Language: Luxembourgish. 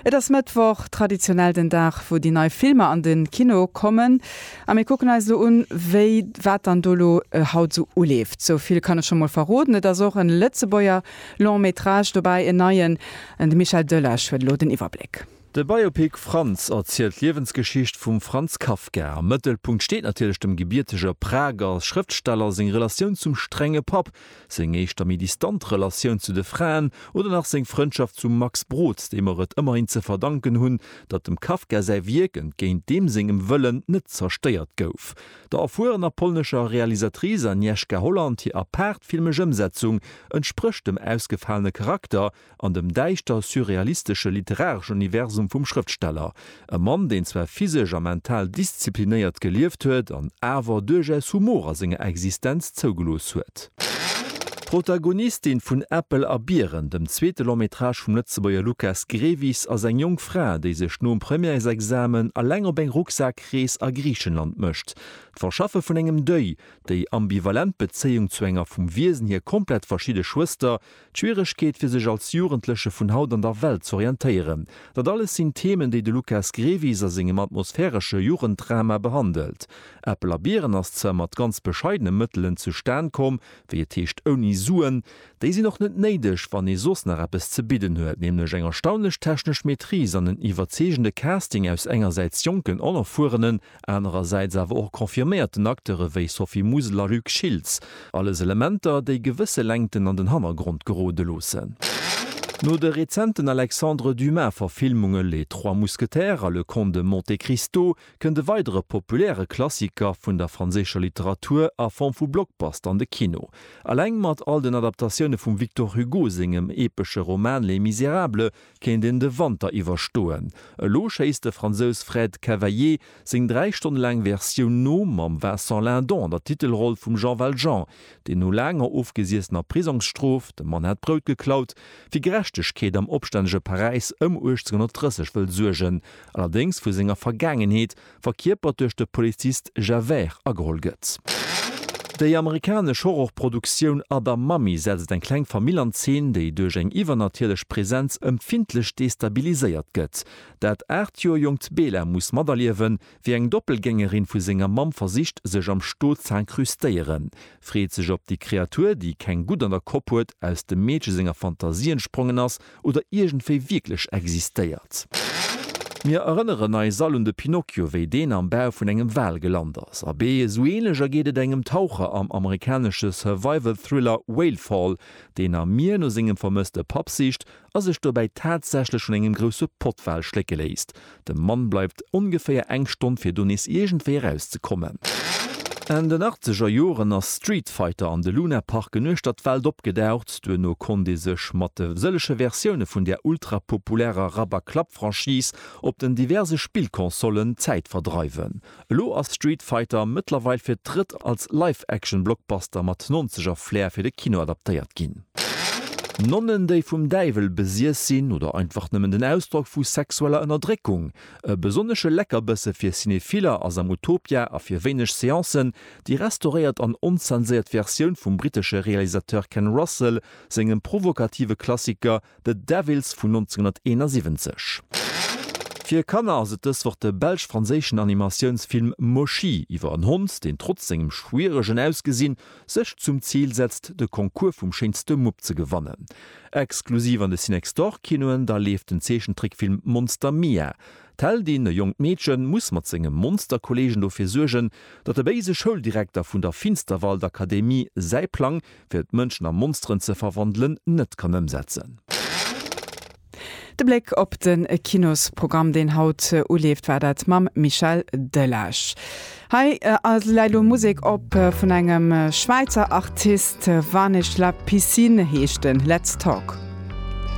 Et ass Mëttwoch, traditionell den Dag, wou déi nei Filmer an de Kino kommen. A mir kucken eis elo un, wéi wat dann do elo haut esou uleeft. Sou vill kann ech scho mol verroden, et ass och e Lëtzebuerger Long Métrage dobäi, en neien. De Michel Delage huet elo den Iwwerbléck. De Biopic Franz erzielt d'Liewensgeschicht vum Franz Kafka. Am Mëttelpunkt steet natierlech dem gebiertege Prager Schrëftsteller seng Relatioun zum strenge Papp, seng éischter méi distant Relatioun zu de Fraen oder nach seng Frëndschaft zum Max Brod, deem mer et ëmmerhin ze verdanken hunn, datt dem Kafka säi Wierk, entgéint deem sengem Wëllen, net zerstéiert gouf. Der erfuerener polnescher Realisatrice Agnieszka Holland hir apaart filmesch Ëmsetzung entsprécht dem ausgefalene Charakter, an dem däischter surrealistesche literareschen Universum vum Schrëftsteller, e Mann, deen zwar physesch a mental disziplinéiert gelieft huet an awer duerchaus Humor a senger Existenz zougelooss huet. D'Protagonistin vun Äppel a Biren, dem zweete Long-métrage vum Lëtzebuerger Lukas Grevis, ass eng jonk Fra, déi sech nom Premièresexamen eleng op eng Rucksak-Rees a Griichenland mécht. D'Verschaffe vun engem Deuil, déi ambivalent Bezéiung zu enger vum Wiesen hier komplett verschidde Schwëster, D'Schwieregkeet fir sech als Jugendleche vun haut an der Welt z'orientéieren, dat alles sinn Themen, déi de Lukas Grevis a sengem atmosphäresche Jugenddrama behandelt. Äppel a Biren ass zwar mat ganz bescheidene Mëttelen zustan komm, wéi et heescht ouni Suen. Déi sinn och net néideg, wann ee soss nach eppes ze bidden huet, nämlech eng erstaunlech technesch Maîtrise an en iwwerzeegende Casting aus engersäits jonken, onerfuerenen, anerersäits awer och confirméierten Acteure wéi Sophie Musel a Luc Schiltz, alles Elementer, déi gewësse Längten an den Hannergrond gerode loossen. No de rezenten Alexandre Dumas-Verfilmunge Les trois mousquetaires a Le Comte de Monte Cristo kënnt e weidere populäre Klassiker vun der franséischer Literatur a Form vu Blockbuster an de Kino. Eleng mat all den Adaptatioune vum Victor Hugo sengem epesche Roman Les Misérables Kéint een de Wanter iwwerstoen? Elo schéisst de Fransous Fred Cavaillé seng dräi Stonne laang Versioun no, mam Vincent Lindon an der Titelroll vum Jean Valjean, deen no laanger ofgesiessener Prisongsstrof, dem Mann hat d'Brout geklaut, fir Gerechtegkeet am opstännege Paräis ëm 1830 wëll suergen, allerdéngs vu senger Vergaangenheet verkierpert duerch de Polizist Javert, ageholl gëtt. Déi amerikanesch Horrorproduktioun Other Mommy setzt eng kleng Famill an Zeen, déi duerch eng iwwernatierlech Presenz empfindlech destabiliséiert gëtt. Dat aacht Joer jonkt Bela muss materliewen, wéi eng Doppelgängerin vu senger Mamm versicht, sech am Stot z'incrustéieren. Freet sech op déi Kreatur, déi keng Gutt an der Kopp huet, aus dem Meedche senger Fantasie entsprongen ass oder iergendwéi wierklech existéiert. Mir erënneren eis all un de Pinocchio, wéi deen am Bau vun engem Wal gelant ass. Abee, esou änlech ergeet et engem Taucher am amerikanesche Survival-Thriller Whale Fall, deen am Mier no sengem vermësste Papp sicht a sech dobäi tatsächlech vun engem grousse Pottwal schlécke léisst. De Mann bleift ongeféier eng Stonn fir do nees iergendwéi eraus ze kommen. Enn den achtzeger Joren ass Street Fighter an de Luna Park en uechter d'Welt opgedaucht. Duerno konnt ee sech mat de sëllege Versioune vun där ultrapopulärer Rub-a-Club-Franchise op den diverse Spillconsollen d'Zäit verdreiwen. Elo ass Street Fighter mëttlerweil fir d'drëtt als Live-Action-Blockbuster mat Nonzeger-Flair fir de Kino adaptéiert ginn. Nonnen, déi vum Däiwel besiess sinn, oder einfach nëmmen den Ausdrock vu sexueller Ënnerdréckung? E besonnesche Leckerbësse fir Cinephiller ass am Utopia a fir wéineg Seancen déi restauréiert an onzenséiert Versioun vum brittesche Realisateur Ken Russell sengem provokative Klassiker The Devils vun 1971. Fir Kanner ass et dës Woch de belsch-franséischen Animatiounsfilm Moshi iwwer en Hond, deen trotz sengem schwieregen Ausgesinn sech zum Zil setzt, de Concours vum schéinste Mupp ze gewannen. Exklusiv an de Cinextorkinoen da leeft den Zeechentrickfilm Monster Mia. D'Heldin, e jonkt Meedchen, muss mat senge Monsterkolleegen dofir suergen, datt de béise Schouldirekter vun der Finsterwaldakademie säi Plang fir d'Mënschen a Monsteren ze verwandelen, net kann ëmsetzen. De Bléck op de Kinosprogramm, deen haut uleeft, war dat mam Michel Delage. Hei läit elo Musek op vun engem Schwäizer Artist, Vanish La Piscine heescht en, Let's Talk.